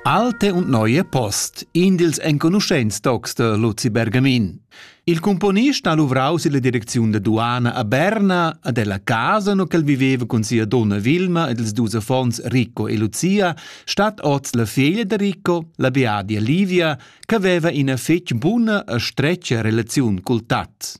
Alte und neue Post, in dils enconuschents tocs de Luzi Bergamin. Il componist ha luvrau silla direcziun da duana a Berna a della casa no ch'el viveva cun sia donna Vilma ed ils dus affons Ricco e Lucia, stat oz la figlia de Ricco, la beadia Livia, che veva ina fetg buna e stretga relaziun cul tat.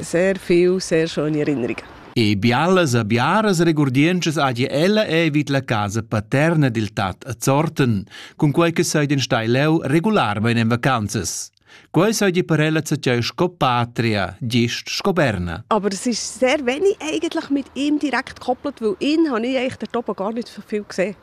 Sehr viel, sehr schöne Erinnerungen. E bialas e biaras regurdientschas hagi ella ei vid la casa paterna dil tat a Zorten, cun quei che sei den stai leu regularmein en vacanzas. Quei sei per ella zatgei sco patria, gist sco Berna. Aber es ist sehr wenig eigentlich mit ihm direkt gekoppelt, weil ihn habe ich eigentlich dort oben gar nicht so viel gesehen.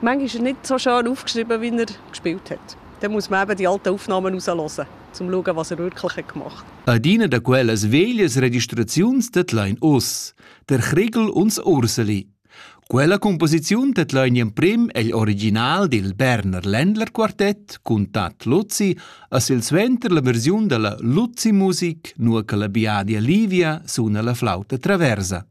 Manchmal ist er nicht so schön aufgeschrieben, wie er gespielt hat. Dann muss man eben die alten Aufnahmen rauslassen, um zu schauen, was er wirklich hat gemacht hat. Adina da quellas veglias registraziuns tedlain oss, der Chrigel uns Urseli. Quella composiziun tedlain in prim egl original dil Berner Ländlerquartett cun Tat Luzzi as il suenter la versiun della Luzzi Musik nur che la Biadia Livia suna la flauta traversa.